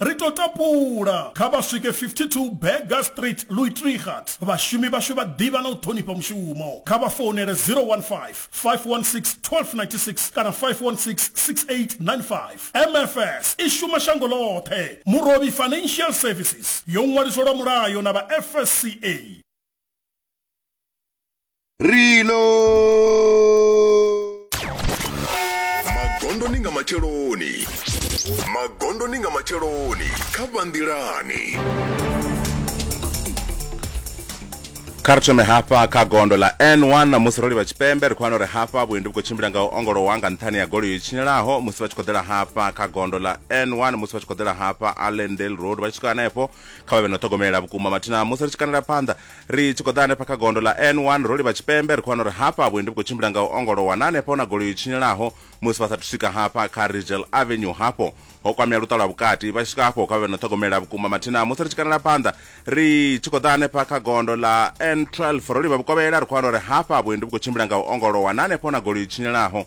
Ri tou tapula, kha vha swike 52 Burger Street, Luitregat. Vhashumi vhashu vha ḓivha na u ṱhonifha mushumo. Kha vha founele 015 516 1296 kana 516 6895. MFS i shuma shango ḽoṱhe. Murovhi Financial Services yo ṅwaliswa lwa mulayo na vha FSCA. rilo magondoni nga matsheloni magondoni nga matsheloni kha vhanḓilani kha ri thome hafha kha gondo ḽa n1 na musi ro livha tshipembe ri khou wana uri hafha vhuendi vhu khou tshimbila nga u ongolowa nga nṱhani ya goloi yo tshinyelaho musi vha tshi khou ḓela hafha kha gondo ḽa n1 musi vha tshi khou ḓela hafha allendale road vha tshi swika hanefho kha vha vhe na u ṱhogomelela vhukuma mathina musi ri tshi kanela phanḓa Ri tshi khou ḓa hanefha kha gondo ḽa N1 ro livha tshipembe ri khou wana uri hafha vhuendi vhu khou tshimbila nga u ongolowa na hanefha hu na goloi yo tshinyalaho musi vha sathu swika hafha kha Rigel Avenue hafho ho kwamea luṱa lwa vhukati vha tshi swika hafho kha vhe no ṱhogomela vhukuma mathina musi ri tshi kanela phanḓa ri tshi khou ḓa hanefha kha gondo ḽa N12 ro livha vhukovhela ri khou wana uri hafha vhuendi vhu khou tshimbila nga u ongolowa na hanefha hu na goloi yo tshinyalaho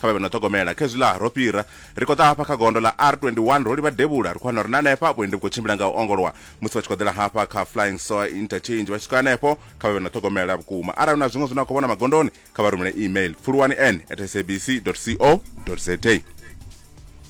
Kha vha vhe no ṱhogomela kha hezwiḽa ro fhira ri khou ḓa hafha kha gondo ḽa R21 ro livha devhula ri khou wana uri na hanefha vhuendi vhu khou tshimbila nga u ongolowa musi vha tshi khou ḓela hafha kha Flying Soa Interchange vha tshi swika hanefho kha vha vhe no ṱhogomela vhukuma arali na zwiṅwe zwine a khou vhona magondoni kha vha rumele email pfuluwani n at sabc co za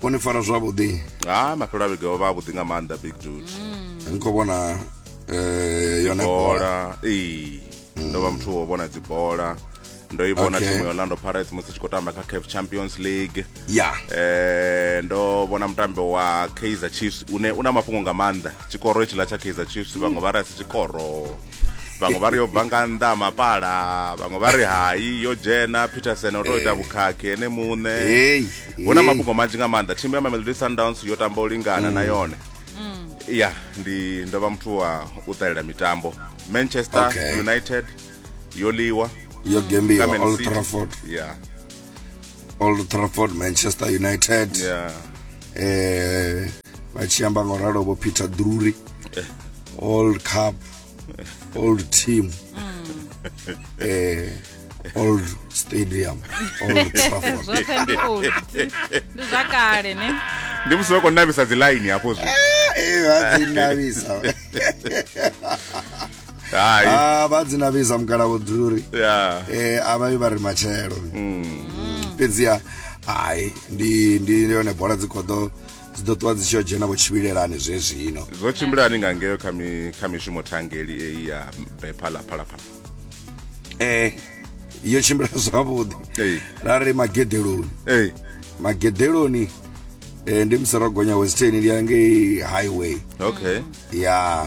vho ni fara zwavhuḓi ha mafhelo a vhege o vha a vhuḓi nga maanḓa big dude ni khou vhona eh, yone bola bola ee ndo vha muthu wo vhona dzibola ndo i vhona Okay. thimu ya orlando pirates musi tshi khou tamba kha caf champions league ya Eh, ndo vhona mutambi wa kaizer chiefs une una mafhungo nga maanḓa tshikoro itshiḽa tsha kaizer chiefs vhaṅwe vha ri asi tshikoro vhaṅwe vha ri yo bva nga nnḓa mapala vhaṅwe vha ri hai yo dzhena peterson o to ita vhukhakhi ene muṋe hu na mafhungo manzhi nga maanḓa thimu ya mamelodi sundowns yo tamba u lingana na mm. yone mm. ya ndi ndo vha muthu wa u ṱalela mitambo manchester united yo liwa yo gembiwa old trafford ya old trafford manchester united yeah. eh, vachiyamba nga uralo vho peter drury eh. old cup old team mm. eh, old stadium old trafford ndi musi vha khou navisa dzi line hafho zwi eh, eh, vha dzi navisa hai Ah, vha dzina vhiza mugalavo dzuri ya eh a vha vha ri matshelo fhedziha hai ndi ndi ndi yone bola dzi kho ḓo dzi ḓo ṱuwa dzi tshi yo dzhena vho tshivhilelani zwezwino zwo tshimbilani nga ngeyo kha mi- kha mishumo thangeli eyi ya bephalaphalaphala eh yo tshimbila zwavhuḓi Ee. ra ri magedeloni eyi magedeloni eh, ndi musi ro gonya western ndi ya ngei highway okay ya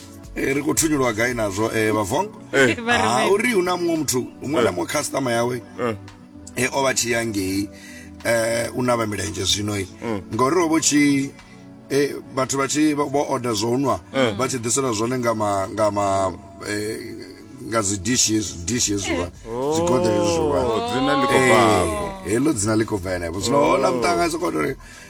Eh, ri khou thunyulwa gai nazwo eh, vhavong Eh. Vha ri Ah, mini? uri hu na muṅwe muthu muṅwe na muṅwe customer yawe Eh. e o vha tshi ya ngei eh u na vha milenzhe zwino i Mm. ngori o vho tshi eh vhathu vha tshi vha- vho order zwo nwa Mm. vha tshi ḓisela zwone nga ma nga ma eh nga dzi dishes dishes zwa Oh, dzi godere zwa dzina ḽi khou bva hafho. heḽo dzina ḽi khou bva henefho zwino Oh. hola mutanga soko tori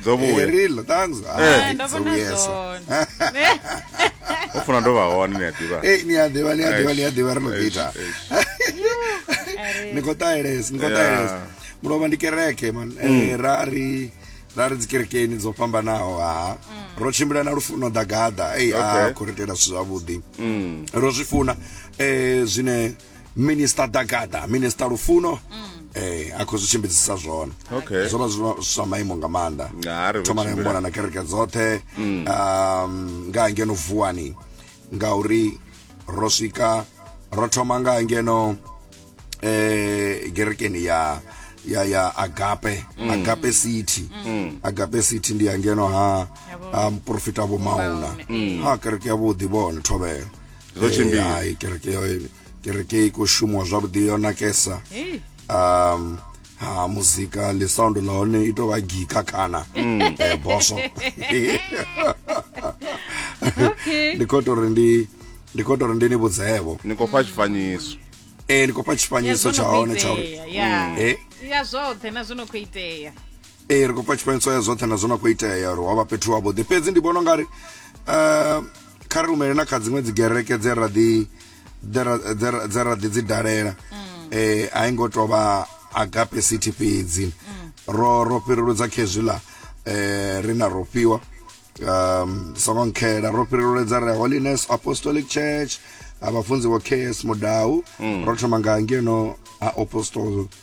dzo vhuya Erilo, thanks. Eh, Ai, ndo dzo vhona vhuyesa. zwone ho funa ndo vha hone ni a ḓivha Eh, ni a ḓivha, ni a ḓivha, ni a ḓivha, ri no ḓi ita. Ni khou ṱahelesa, ni khou Yeah. ṱahelesa. Mulovha ndi kereke, man. Eh, ra ri- ra ri dzikerekeni dzo fhambanaho, ha. Ro tshimbila na Lufuno Dagada, ei, ah, Okay. khou ri itela zwithu zwavhuḓi. Ro zwi funa, eh, zwine minista dagada minista lufuno eh a khou zwi tshimbidzisa zwone Okay. zwo vha zwi zwa- zwa maimo nga maanḓa Nga a ri vho thoma na tshimbila. mona na kereke dzoṱhe um, nga hangeno vuwani ngauri ro swika ro thoma nga hangeno eh gerekeni ya ya ya agape agape city agape city ndi hangeno ha ha muprofita vho mauna ha kereke ya vhuḓi vhone thovhelo zwo tshimbila ai kereke yo kereke i khou shumiwa zwavhuḓi yo nakesa um ha muzika le sound la hone i tou vha gika kana mm. eh, boso ndi khou tori ndi ndi khou tori ndi ni vhudzevo ni khou fha tshifanyiso ee eh, ndi khou fha tshifanyiso tsha hone tsha uri mm. eh. ya zwoṱhe na zwo no khou itea Ee, ri khou pfa tshifanyiso ya zwoṱhe na zwo na khou itea uri wa vha fhethu wavhuḓi fhedzi ndi vhona u nga ri um kha ri rumele na kha dziṅwe dzi gereke dze ra ḓi dze ra- dze ra- dze ra ḓi dzi dalela um a i ngo tou vha agape city fhedzi ro ro fhiruludza khezwiḽa um ri na ro fhiwa um songo nkhela ro fhirululedza re holiness apostolic church ha vhafunzi vho ks mudau ro thoma nga ngeno ha apostol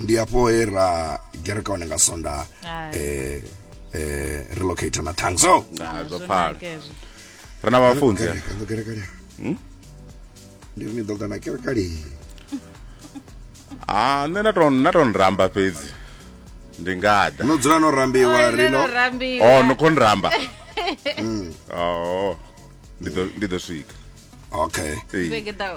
ndi hafho he ra gereka hone nga sonda Hai. eh, eh, relocator na tongue so Ah, zwo pfala Kezwo. ri na vhafunzi eh? Kereka, ndo kereka lea. Hmm? ndi ri ni ḓo ḓa na kereka lea. ah nṋe na to na to nramba fhedzi ndi ngada no dzula no rambiwa Oi, rino no rambiwa. oh no kon ramba oh ndi ḓo ndi ḓo swika okay Ee. Vhege ḓaho.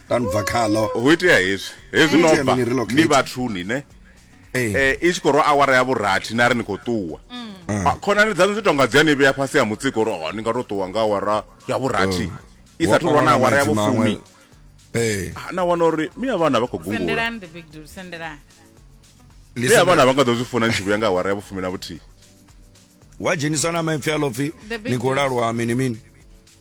ra ni bva khaḽo ho itea hezwi hezwi no bva ni vhathuni ne eh. eh i tshi khou rwa awara ya vhurathi na ri ni khou ṱuwa mm. ah, khonani dzaṋu dzi tonga dzi a ni vhea fhasi ha mutsiko uri oh, ni nga to ṱuwa nga awara ya vhurathi oh. i sa thulwa na awara ya vhufumi eh. ah, na wana uri mi ya vhana vha khou gungula mi ya vhana vha nga ḓo zwi funa ni tshi vhuya nga awara ya vhufumi na vhuthihi wa dzheniswa na maipfi a lopfi ni khou lalwa mini mini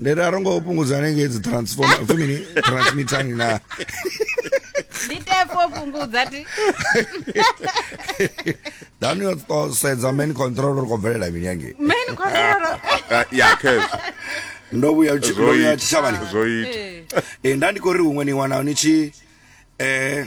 ndiri arongo fhungudza nenge dzi transformer upfi mini transmittani na nditefo fhungudza ti dani yo to sedza main control uri kho bvelela mini yange main control ah, ya kez ndo vhuya ndo vhuya tshavhani zwo ita eh, eh nda ndi kho ri huṅwe ni wana ni tshi eh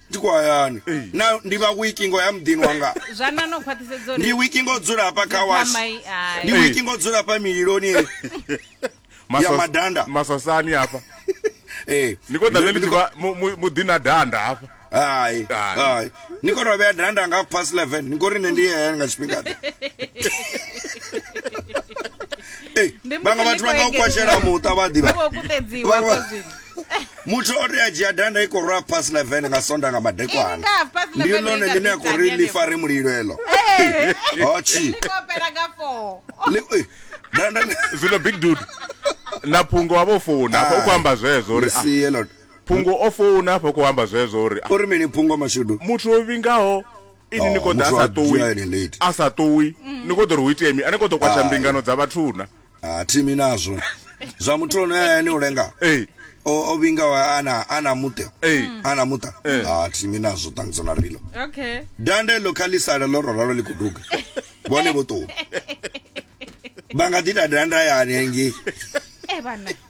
Ndi khou hayani. Na, ndi vha wiki ngo ya muḓini wanga. Zwanḓa no khwaṱhisedza uri. Ndi wiki ngo dzula hafha kha wash. Ndi wiki ngo dzula hafha mililoni. Ya madanda. Maswasani hafha. Eh. Ni khou ḓa ḽi tshi vha muḓi na danda hafha. Hai. Hai. Ni khou tovhea danda nga past 11. Ni khou ri nṋe ndi hayani nga tshifhinga. vhaṅwe vhathu vha nga u kwashela muṱa vha ḓivha muthu o tea dzhia danda i khou rwa pass 11 nga sonda nga madekwana ndi lone ḽine a khou ri ḽi fare mulilo eḽo hochi danda zwino big dude na phungo wa vho founa hafha u khou amba zwezwo uri ah, phungo o founa hafha u khou amba zwezwo uri ah, uri mini phungo mashudu muthu o vhingaho ini ni khou ḓa a sa ṱuwi a sa ṱuwi ni khou ḓo ri hu itea mi a ni khou ḓo kwatsha mbingano dza vhathuna a thimi nazwo zwa muthu ono ya ene u lenga Ee. o o vhinga wa- ana ana muṱe Ee. ana muṱa Ee. a thimi nazwo ṱangudzo na rilo okay dande ḽo kha ḽi sala ḽo roralo ḽi khou duga vhone vho ṱuwa vha nga ḓi ita dande hayani hangei e vhana